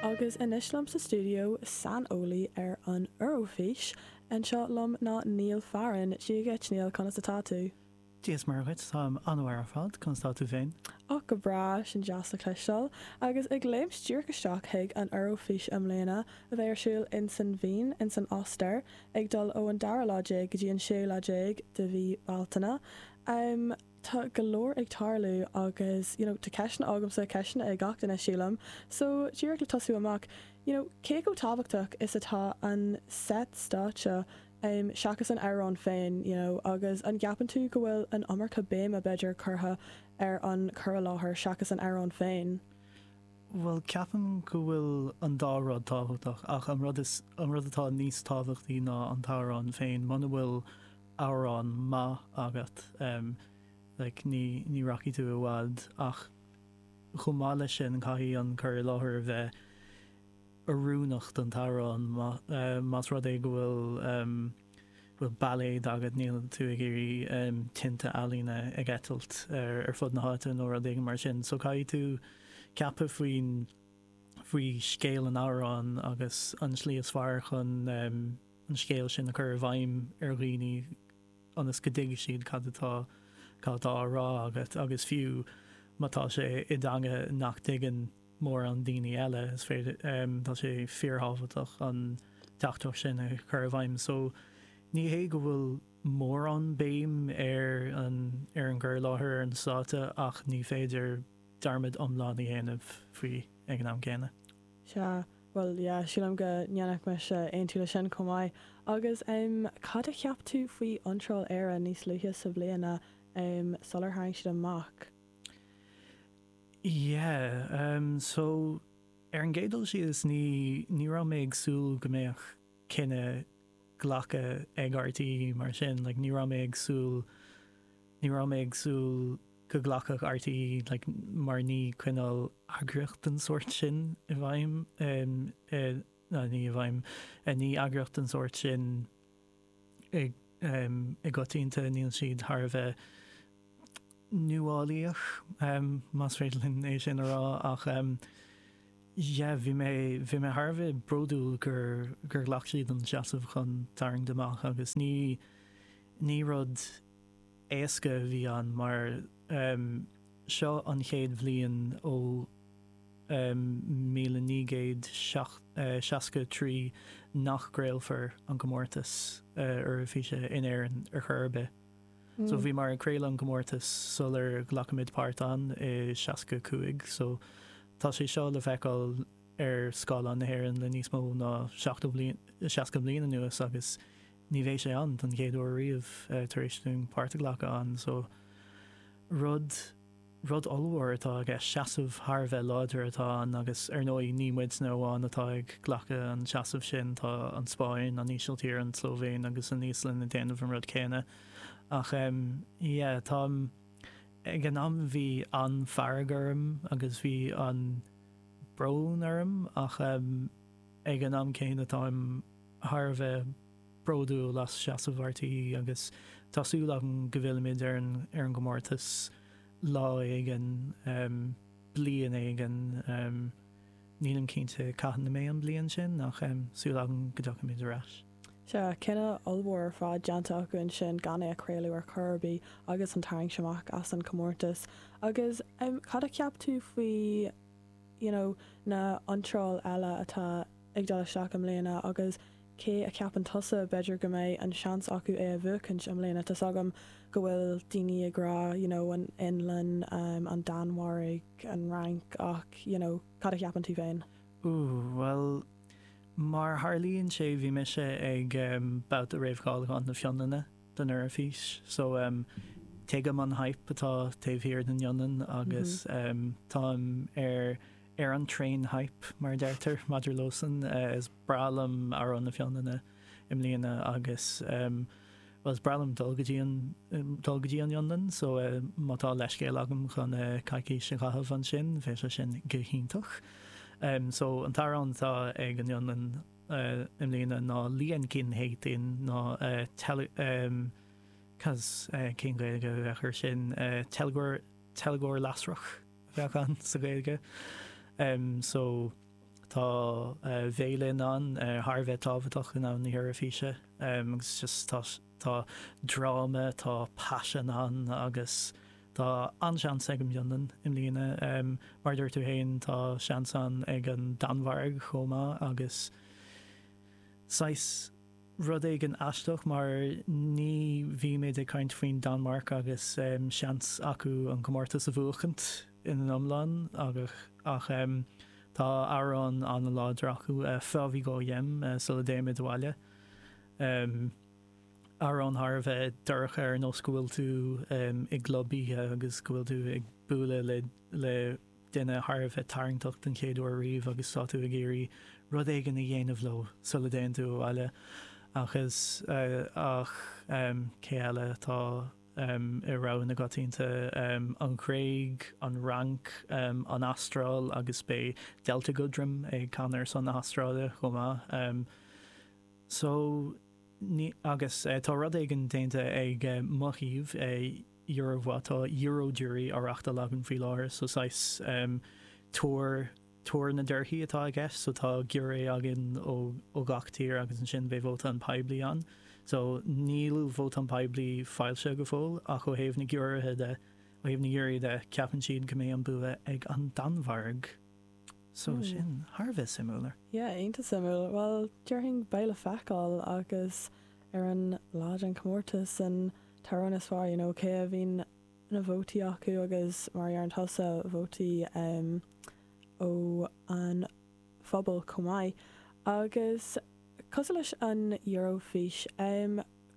Agus anois liom sa stiúideo, saineolaí ar an Eurofís anseo liom ná Neil Farren. Dia dhuit, Neil, conas atá tú? Dia is Muire dhuit, táim an-mhaith ar fad, conas atá tú féin? Och, go breá, sin deas le cloisteáil. Agus ag léimt díreach isteach chuig an Eurofís i mbliana, a bheidh ar siúl in san Vín, in san Ostair, ag dul ó an dara lá déag go dtí an séú lá déag de mhí Bealtaine. tá go leor ag tarlú agus you know tá ceisteanna agamsa, ceisteanna ag gach duine sílim, so díreach le tosú amach, you know cé chomh tábhachtach is atá an set stáitse em seachas an amhrán féin you know agus an gceapann tú go bhfuil an iomarca béime b'fhéidir curtha ar an cur i láthair seachas an amhrán féin? Em bhuel ceapaim go bhfuil an dá rud tábhachtach ach an rud is an rud atá níos tábhachtaí ná an t-amhrán féin muna bhfuil amhrán maith agat, like ní ní rachaidh tú i bhfad ach chomh maith leis sin caithfidh an cur i láthair a bheith oiriúnach don t-amhrán más rud é go bhfuil bhfuil bailéad agat níl tú ag iarraidh tinte ealaíne ag eitilt ar ar fud na háite nó rud éigin mar sin so caithfidh tú ceapadh faoin faoi scéal an amhrán agus an slí is fearr chun an scéal sin a chur i bhfeidhm ar dhaoine ionas go dtuigfidh siad cad atá á rá agat agus fiú má tá sé i dteanga nach dtuigeann mórán daoine eile, is féidir, tá sé fíorthábhachtach an teachtaireacht sin a chur i bhfeidhm. So, ní hé go bhfuil mórán béim ar an gcur i láthair ar an stáitse ach ní féidir dearmad iomlán a dhéanamh faoi ag an am céanna. Sea, bhuel, yeah, sílim go ndéanfadh mise aontú leis sin chomh maith. Agus em cad a cheap tú faoi iontráil Éire níos luaithe sa bhliain a em sular tharraing siad amach? Yeah, em so ar an gcéad dul síos ní, ní raibh mé ag súil go mbeadh. cinneadh glactha ag RTÉ mar sin, like ní raibh mé ag súil, ní raibh mé ag súil go glacfadh RTÉ like mar ní coinneáil eagraíocht den sórt sin i bhfeidhm eh ní i bhfeidhm eh ní eagraíocht den sórt sin i i gcoitinne níl siad thar a bheith nuálaíoch, más féidir linn é sin a rá, ach yeah bhí mé, bhí mé thar a bheith bródúil gur, gur ghlac siad an seasamh chun tarraingt amach agus ní, ní rud éasca a bhí ann mar seo an chéad bhliain ó míle naoi gcéad seacht, seasca a trí nach gcraolfar an comórtas Eoraifíse in Éirinn ar chor ar bith. So bhíomar ag craoladh an comórtas sular ghlacfaimid páirt ann i seasca cúig. So tá sé seo le feiceáil ar scáileáin na hÉireann le níos mó ná seachtó bliain, seasca bliain anuas agus ní bheidh sé ann don chéad uair riamh tar éis dúinn páirt a ghlacadh ann. So rud. Rud ollmhór atá i gceist, seasamh thar a bheith láidir atá ann agus ar ndóigh ní muidne amháin atá ag glacadh an tseasaimh sin, tá an Spáinn, an Ísiltír, an tSlóivéin agus an Íoslainn ag déanamh an rud céanna. Ach em, yeah, tá em, ag an am bhí an-fhearg orm agus bhí an-bhrón orm ach em, ag an am céanna táim thar a bheith, bródúil as seasamh RTÉ agus tá súil agam go bhfillfimid ar an gcomórtas lá éigin, bliain éigin, nílim cinnte cathain a mbeidh an bliain sin ach súil agam go dtiocfaimid ar ais. Sea, cinneadh ollmhór ar fad déanta acu ansin gan é a chraoladh ar chor ar bith agus an tarraingt amach as an chomórtas agus cad a cheap tú faoi you know na h-iontráil eile atá ag dul isteach i mbliana agus cé a cheapann tusa, b'fhéidir go mbeidh an seans acu é a bhuachaint i mbliana, tá's agam go bhfuil daoine ag rá you know an Fhionlainn, an Danmhairg, an Fhrainc ach you know cad a cheapann tú féin? Ooh bhuel mar a tharlaíonn sé bhí mise ag ehm babhta réamhcháiliúcháin na Fionlainne don Eoraifís so ehm tuigim an hype atá taobh thiar den Fhionlainn agus ehm táim ar ar an train hype, mar a deirtear maidir leosan. Is breá liom amhrán na Fionlainne i mbliana agus, bhuel, is breá liom dul go dtí an, dul go dtí an Fhionlainn, so, má tá leithscéal agam chun coicís a chaitheamh ansin, bheadh sé sin go hiontach. So, an t-amhrán atá ag an Fhionlainn i mbliana ná Liekinheitin, nó cad, cén Ghaeilge a bheadh air sin, teilgeoir, teilgeoir lasrach? bheadh ann sa Ghaeilge. So tá veidhlín ann thar a bheith tábhachtach i ndomhan na hEoraifíse agus just tá tá dráma, tá paisean ann agus tá an-seans ag an bhFionlainn i mbliana. Mar a dúirt tú féin, tá seans ann ag an Danmhairg chomh maith agus saghas. rud éigin aisteach mar ní bhímid ag caint faoin Danmhairg agus seans acu an comórtas a bhuachaint ina n-iomlán ach tá amhrán an-láidir acu, Før vi går hjem, Sula dtéimid abhaile, amhrán thar a bheith dorcha ar nós go bhfuil tú i gclub oíche agus go bhfuil tú ag bualadh le duine thar a bheith tarraingteach den chéad uair riamh agus tá tú ag iarraidh rud éigin a dhéanamh leo sula dtéann tú abhaile ach is ach em cé eile atá em i rogha na gcoitianta em an Ghréig, an Fhrainc, em an Astráil agus beidh Delta Goodrem ag canadh ar son na hAstráile chomh maith em so ní agus tá rud éigin déanta ag eh mo thaobh eh Euro mhaith. Tá Euro Jury á reachtáil againn faoi láthair, so saghas tuar, tuar na dtorthaí atá i gceist, so tá giúiré againn ó ó gach tír agus ansin beidh vóta an phobail ann. So níl vóta an phobail foilsithe go fóill ach ó thaobh na giúirithe de, ó thaobh na giúirí de, ceapann siad go mbeidh an bua ag an Danmhairg. So sin thar a bheith suimiúil. Yeah, iontach suimiúil. Bhuel, déarfainn beidh le feiceáil agus. Ar an lá den chomórtas, an t-amhrán is fearr, you know, cé a bhíonn na vótaí acu agus mar a deireann tusa, vótaí ó an phobal chomh maith. Agus cosúil leis an Eurofís,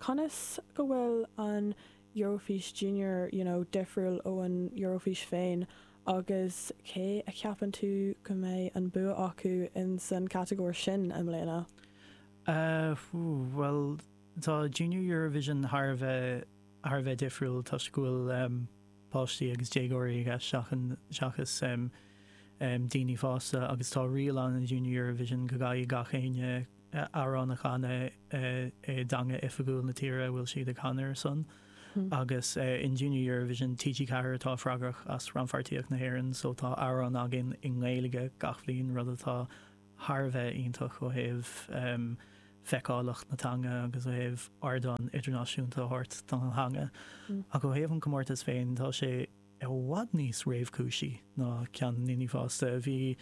conas go bhfuil an Eurofís Junior, you know, difriúil ó an Eurofís féin agus cé a cheapann tú go mbeidh an bua acu ins an chatagóir sin i mbliana? Bhuel, tá Junior Eurovision thar a bheith, thar a bheith difriúil toisc go bhfuil páistí agus déagóirí i gceist seachas daoine fásta agus tá riail ann in Junior Eurovision go gcaithfidh gach éinne amhrán a chanadh i dteanga oifigiúil na tíre a bhfuil siad ag canadh ar son agus in Junior Eurovision, TG4 atá freagrach as rannpháirtíocht na hÉireann so tá amhrán againn i nGaeilge gach bhliain, rud atá. thar a bheith iontach ó thaobh feiceálacht na teanga agus ó thaobh ardán idirnáisiúnta a thabhairt don theanga ach ó thaobh an comórtas féin tá sé i bhfad níos réamhchúisí ná ceann na ndaoine fásta. Bhí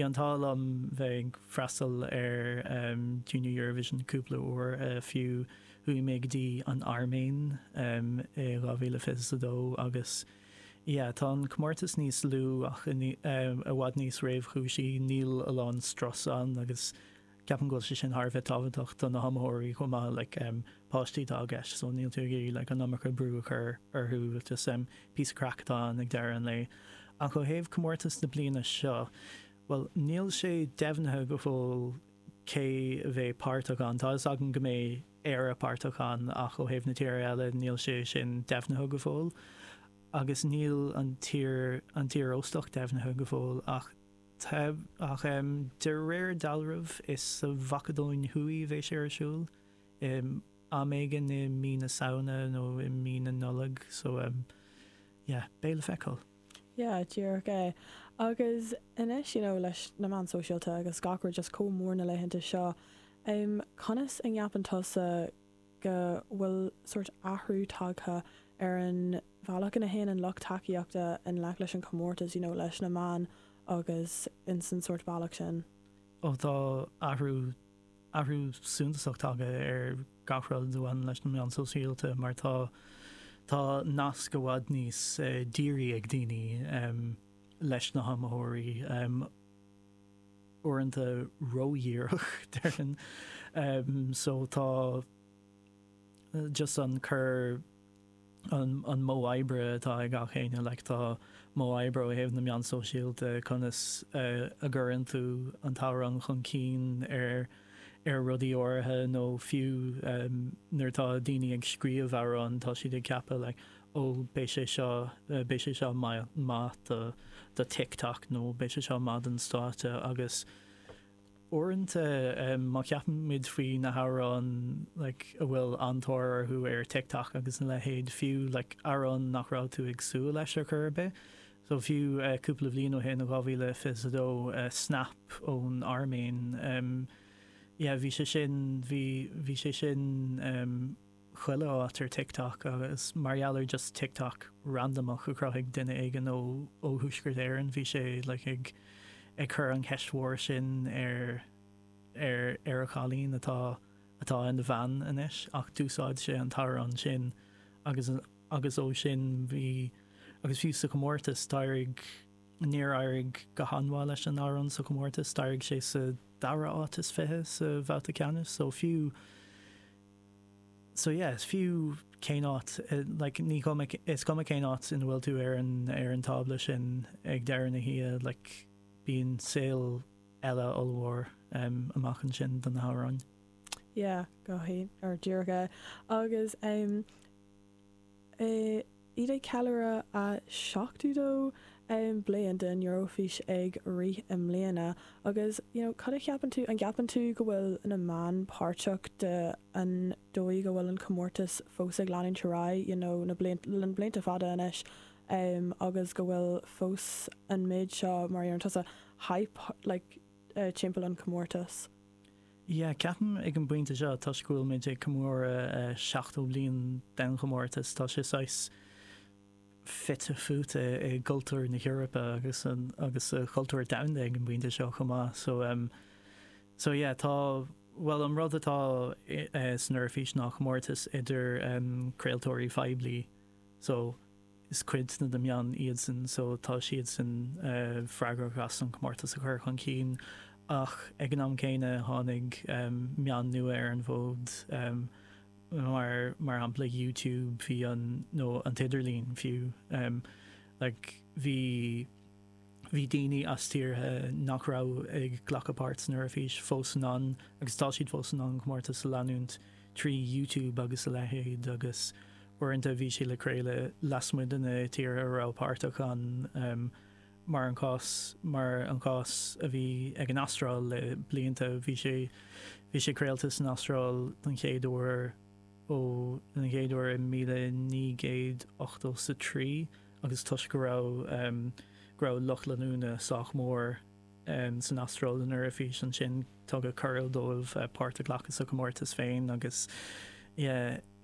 an t-ádh liom bheith ag freastal ar Junior Eurovision cúpla uair fiú, chuaigh mé go dtí an Airméin i 2022 agus, Yeah, tá an comórtas níos lú ach i bhfad níos réamhchúisí, níl a lán strus ann agus ceapaim go bhfuil sé sin thar a bheith tábhachtach do na hiomaitheoirí chomh maith, like, páistí atá i gceist so níl tú ag iarraidh like an iomarca brú a chur orthu, just píosa craic atá ann ag deireadh an lae. Ach ó thaobh comórtas na bliana seo, bhuel, níl sé deimhnithe go fóill cé a bheidh páirteach ann, tá a fhios againn go mbeidh, Éire páirteach ann ach ó thaobh na tíre eile níl sé sin deimhnithe go fóill agus níl an tír, an tír óstach deimhnithe go fóill ach tá, ach em de réir dealraimh is sa Mhacadóin Thuaidh a bheidh sé ar siúl em am éigin i mí na Samhna nó i mí na Nollag so em yeah beidh le feiceáil. Yeah, díreach é. Agus anois, you know, leis na meáin sóisialta agus gach rud just chomh mór na laethanta seo, em, conas a nceapann tusa go bhfuil sórt athrú tagtha ar an bhealach ina dtéann an lucht tacaíochta i ngleic leis an chomórtas, you know, leis na meáin agus ins an sórt bealach sin? Oh, tá athrú athrú suntasach tagtha ar gach rud a bhaineann leis na meáin sóisialta mar tá tá nasc i bhfad níos dírí ag daoine leis na hiomaitheoirí, uaireanta ródhíreach déarfainn, so tá just an cur. an modh oibre atá ag achan duine, like tá modh oibre ó thaobh na meán sóisialta, conas a gcuireann tú an t-amhrán chun cinn ar ar rudaí áirithe nó fiú nuair atá daoine ag scríobh amhrán tá siad ag ceapadh like oh beidh sé seo, beidh sé seo maith do do TikTok nó beidh sé seo maith don stáitse agus. Uaireanta má cheapaimid faoi na hamhráin like a bhfuil an-tóir orthu ar TikTok agus a leithéid, fiú like amhrán nach raibh tú ag súil leis ar chor ar bith, so fiú cúpla bliain ó shin, 2022, Snap ón Airméin, yeah bhí sé sin, bhí sé sin. chuile áit ar TikTok agus mar gheall ar just TikTok randamach a chruthaigh duine éigin ó ó Thuaisceart Éireann bhí sé like ag ag cur an cheist mhóir sin ar ar ar a chailín atá atá ina bhean anois ach d'úsáid sé an t-amhrán sin agus agus ó sin bhí agus fiú sa chomórtas d'éirigh níor éirigh go han-mhaith leis an amhrán sa chomórtas chríochnaigh sé sa dara áit is fiche sa bhabhta ceannais so fiú So yeah, is fiú cén áit, like, ní cuma, is cuma cén áit ina bhfuil tú ar an, ar an tábla sin ag deireadh na hoíche, like, bíonn saol eile ollmhór amach ansin do na hamhráin. Yeah, go díreach. Agus, em. Táimid ag ceiliúradh an 70ú bliain den Eoraifís ag rith i mbliana agus you know cad a cheapann tú, an gceapann tú go bhfuil na meáin páirteach de an dóigh go bhfuil an comórtas fós ag leanúint ar aghaidh you know le blianta fada anois em agus go bhfuil fós an méid seo mar a déarann tusa hype like timpeall an comórtas? Yeah, ceapaim ag an bpointe seo, toisc go bhfuil muid ag comóradh 70 bliain den chomórtas, tá sé saghas fite fuaite i gcultúr na hEorpa agus agus sa chultúr domhanda ag an bpointe seo chomh maith. So em so yeah tá, bhuel an rud atá san Eoraifís ná comórtas idir em craoltóirí poiblí so Is cuid de na meáin iadsan so tá siadsan freagrach as an comórtas a chur chun cinn ach ag an am céanna tháinig meáin nua ar an bhfód mar shampla YouTube nó an t-idirlíon fiú like bhí Bhí daoine as tíortha nach raibh ag glacadh páirt san Eoraifís fós in ann, agus tá siad fós in ann an comórtas a leanúint trí YouTube agus a leithéid, agus uaireanta bhí sé le craoladh lasmuigh de na tíortha a raibh páirteach ann, mar an cás mar an cás a bhí ag an Astráil le blianta, bhí sé bhí sé craolta san Astráil don chéad uair ó don chéad uair i míle naoi gcéad ochtó 's a trí. agus toisc go raibh go raibh lucht leanúna sách mór san Astráil ag an Eoraifís ansin tugadh cuireadh dóibh páirt a ghlacadh sa chomórtas féin agus yeah.